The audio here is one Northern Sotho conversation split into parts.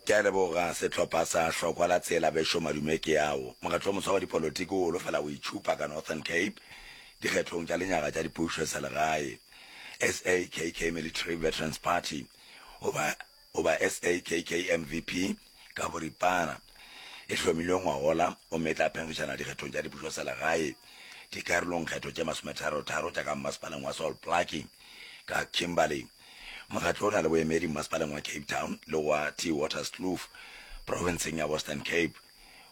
Ke a leboga sehlopha sa Hlokwa la Tsela, Bešo Madume Keao. Mokgatlo wo moswa wa dipolotiki o holofela go itšhupa ka Northern Cape dikgethong tša lenyaga tša dipušo selegae. SAKK Military Veterans Party, goba, goba SAKK MVP ka boripana, e hlomilwe ngwagola gomme e tla phenkgišana dikgethong tša dipušo selegae dikarolongkgetho tše masometharotharo tša ka mmasepaleng wa Sol Plaatje ka Kimberley. Mokgatlo o na le boemedi mmasepaleng wa Cape Town le wa Theewaterskloof profenseng ya Western Cape.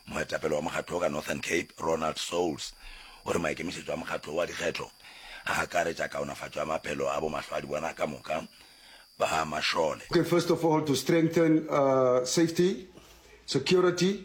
Moetapele wa mokgatlo wo ka Northern Cape, Ronald Soules, o re maikemišetšo a mokgatlo wo wa dikgetho a akaretša kaonafatšo ya maphelo a bomahlwaadibona ka moka ba mašole. Okay, first of all to strengthen safety, security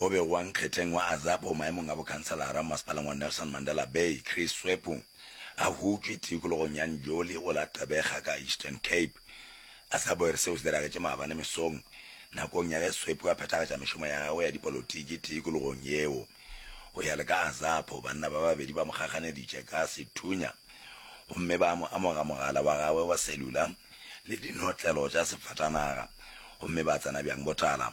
o bego wa nkgetleng wa Azapo maemong a bokhanselara mo masepaleng wa Nelson Mandela Bay, Chris Swepu, a hutšwe tikologong ya Njoli go la Gqeberha ka Eastern Cape. Azapo e re seo se diragetše maabane mesong nakong ya ge Swepu a phethagatša mešomo ya gagwe ya dipolotiki tikologong yeo. Go ya le ka Azapo, banna ba babedi ba mo kgakganeditše ka sethunya gomme ba mo amoga mogala wa gagwe wa selula le dinotlelo tša sefatanaga gomme ba tsena bjang botala.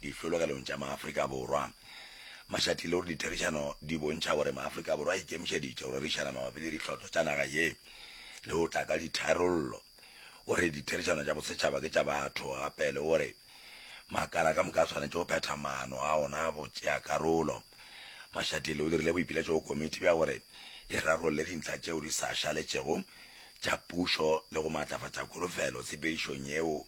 Dihlologelong tša Maafrika Borwa. Mašatile o re ditherišano di bontšha gore Maafrika Borwa a ikemišeditše go rerišana mabapi le ditlhotlo tša naga ye le go tla ka ditharollo. O re ditherišano tša bosetšhaba ke tša batho gape le gore makala ka moka a swanetše go phetha maano a ona a botšeakarolo. Mašatile o dirile boipiletšo go komiti bja gore e rarolle dintlha tšeo di sa šaletšego tša pušo le go maatlafatša kholofelo tshepedišong yeo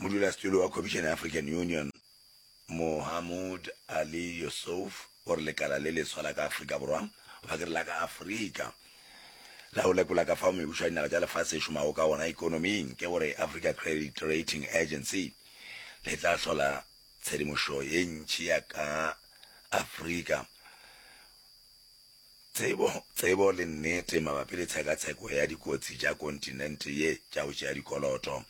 modulasetulo wa khomišene ya african union mohamud ali yusuf o re lekala le leswa la ka afrika borwa goba ke re la ka afrika la go lekola ka fao mebušo ya dinaga tša lefase e šomago ka gona ekonoming ke gore africa credit rating agency le tla hlola tshedimošo ye ntšhi ya ka afrika Tsebo, tsebo le nnete mabapi le tshekatsheko ya dikotsi tša kontinente ye tša go tšea dikoloto,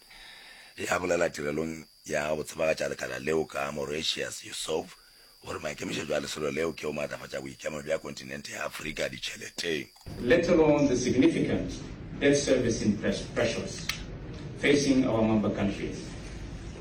e a bolela tirelong ya go tsebagatša lekala leo ka Moratius Yusuf gore maikemišetšo a lesolo leo ke go maatlafatša boikemelo bja kontinente ya Afrika ditšheleteng. let alone the significant debt servicing pressures facing our member countries.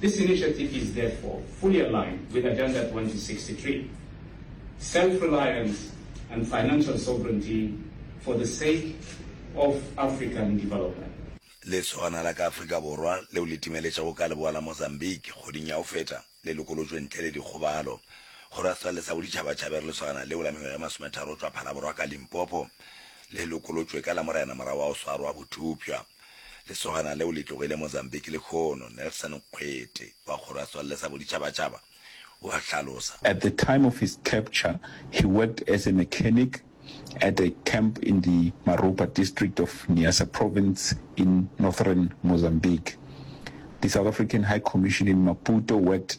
This initiative is therefore fully aligned with Agenda 2063, self-reliance and financial sovereignty for the sake of African development. Lesogana la ka Afrika Borwa leo le timeletšago ka leboa la Mozambique kgoding ya go feta le lokolotšwe ntle le dikgobalo. Go ra setswalle sa boditšhabatšhaba e re lesogana leo la mengwaga e masometharo go tšwa Phalaborwa ka Limpopo le lokolotšwe ka Lamorena morago ga go swarwa botupša. Lesogana leo le tlogile Mozambique lekhono, Nelson Nkgwete wa Kgoro ya Setswalle sa Boditšhabatšhaba o a hlalosa. At the time of his capture, he worked as a mechanic at a camp in the Maropa district of Niassa Province in northern Mozambique. The South African High Commission in Maputo worked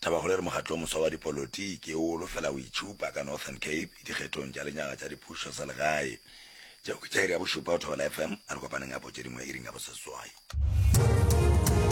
Thabakgolo e re mokgatlo wo moswa wa dipolotiki o holofela go itšhupa ka Northern Cape dikgethong tša lenyaga tša dipušo tsa legae. Tšeo ke tša iri ya bošupa go Thobela FM, a re kopaneng gape o tše dingwe iring ya boseswai.